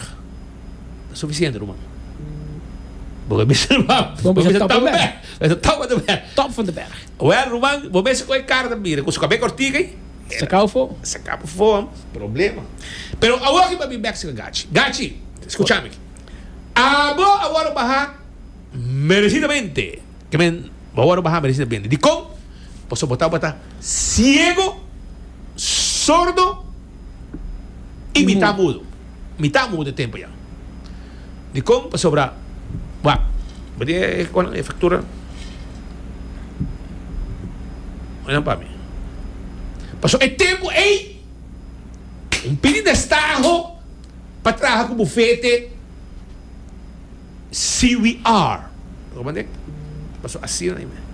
Ta sufisiente ruman. Bo ka bisa ruman. Bo bisa top of the bag. Bo bisa top of the bag. Top van de berg. Well ruman, bo mester kohe kara ta mira ku su kabé kortiku ei. Saka fo. Saka pa fo. Problema. Pero awor aki pabi Mexican Gachi. Gachi, skucha mi aki. Abo awor a baha meresidamente. Amen, bo awor a baha merece na bende. Dikon? Pasobra bo ta tabata ciego, sordo y mitad mudo. Mitad mudo e tempo ya. Dikon? Pasobra, wak, bo tin e conan, e factura? Oye nan pa mi. Pasobra e tempo ey, un pidi destaho pa traha cu bufete. CWR. Lo mande? Paso asina na email.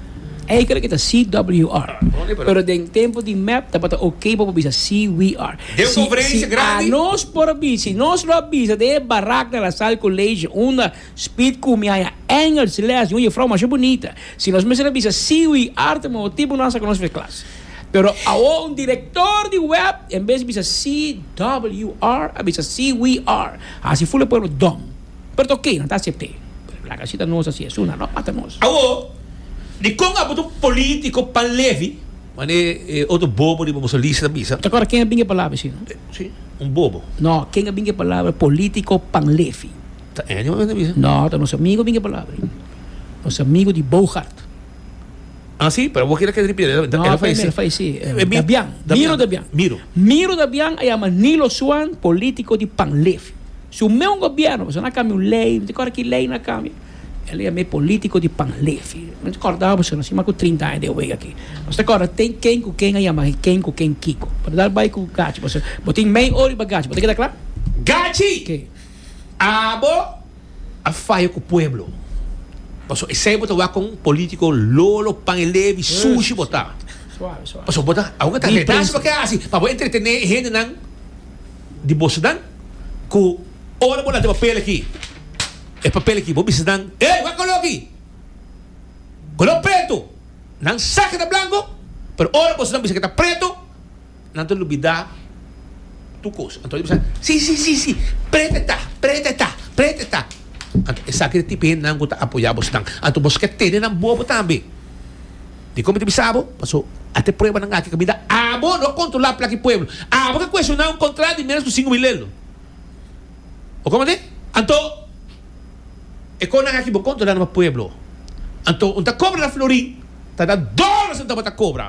Ey creo que ta CWR. Pero den tempo di mep tabata ok pa bo bisa CWR. Den un conferencia grandi. Si anos por a bisa, si nos lo a bisa den e barak na La Salle College unda Speed cumiaña Engels les di un jefrouw masha bunita. Si nos mester a bisa CWR ta mihor tipo nan sa cu nos fai clase. Pero awor un director di web en bes bisa CWR a bisa CWR. Hasi full e pueblo dom. Pero ta oke, nan ta asept'é. Pero laga si ta nos así esuna, no mata nos. Awor, di kon abo ta un polítiko pan levi? Mane e otro bobo riba bo solista ta bisa. Ta kòrda ken a binga e palabra esina? Sí, un bobo. No, ken a binga e palabra polítiko pan levi? Ta Andy mane ta bisa. No, ta nos amigo a binga e palabra. Nos amigo di Boogaard. Ah, sí, pero bo kira ke ripit'é. No, Ela apé falesé. falesé. Eh, Miro- Dabian. Dabian. Miro Dabian. Miro. Miro Dabian a yama Nilo Swan, polítiko di Panleef. Su meun gobièrnu, pasobra nan a kambia un lei, mi ta kòrda ki lei nan a kambia. Ela yam'é polítiko di Panleef. Nan ta kòrda boso, nan a stima ku trinta aña den wei akí. Nos ta kòrda ten ken ku ken a yama i ken ku ken kiko. Bo ta dal bai ku Gachi, pasobra bo tin mei or riba Gachi. Bo ta keda kla? Gachi! Ke? Abo? A faya cu pueblo. Pasobra esey bo ta wak con politico lolo, pan e levi, sushi bo ta. Pasobra bo ta, aunke ta redan si bo ke haci pa bo entretene e hendenan di bo ciudad cu ora bo laga e papel aki, e papel aki, bo bisa nan, ey, wak color aki? Color preto. Nan sa ke ta blanco, pero ora bo ciudad bisa ke ta preto. Nan ta lubidá tur kos. Anto e bisa, Sí, sí, sí, sí, prete e ta, prete e ta, prete e ta. Anto esaki ta tipo hendenan ku ta apoyá bos nan. Anto bos ke tene nan bobo tambe. Dikon mi ta bisa bo? Paso a ta e pruebanan aki ku mi da abo, no a kontrolá plak di pueblo. Abo ke kuestioná un kontrá di ménos ku sinku mil elo. Bo koman te? Anto e kosnan aki bo kontrolá nomás pueblo. Anto un ta kobra na Florin ta da dor na sentau bo ta kobra.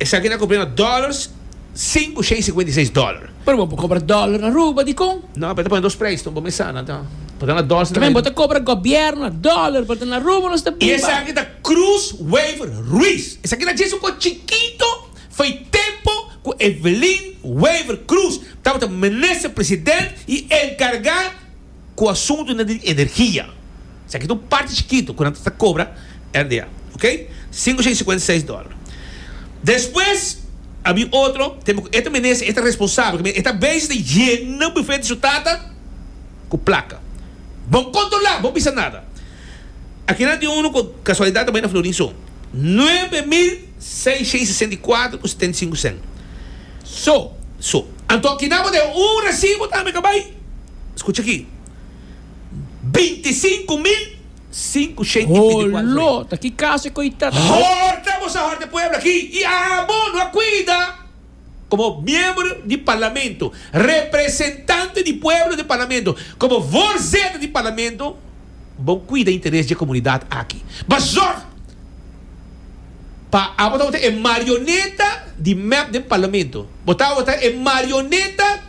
Esaki ta compra na dollars sinku shei sikuenta i seis dollar. Pero bo por cobra dollar na Aruba, dicon? No, pero e ta pone dos prijs no bo mesa na ta por ta na dollar. Tambe bo ta cobra gobierno na dollar por ta na Aruba nos ta biba. I esaki ta Cruz Wever Ruiz. Esaki ta djis un cos chikito for e tempo cu Evelyn Wever Cruz tabata minister president y encarga. ku asuntunan di energia. Esaki ta un parti chikitu ku nan ta sta kobra RDA, ok. Sinku shei sikuenta seis dòler. Despues a bin otro tempo ku e ta menese, e ta responsabel, e ta beisha di yena bufet di su tata ku plaka. Bon kontrolá, bon bisa nada. Aki nan tin unu ku kasualidat ta bai na Florin so. Nuebe mil. Seis shei sesenta i kuater ku setenta i sinku sent. So, so. Anto kina bo den un resibo tambe ka bai? Skucha aki, Binti i sinku mil, sinku shei i binti i kuater frei. Holo! Ta ki kaso e koitat. Horta bo sa hòrta pueblo aki i abo no a kuida. komo miembro di Parlamento, representante di pueblo den Parlamento, komo voorzitter di Parlamento, bo kuida interes dje komunidat aki. Bo a zòg pa abo tabata e marioneta di mep den Parlamento. Bo tabata e marioneta.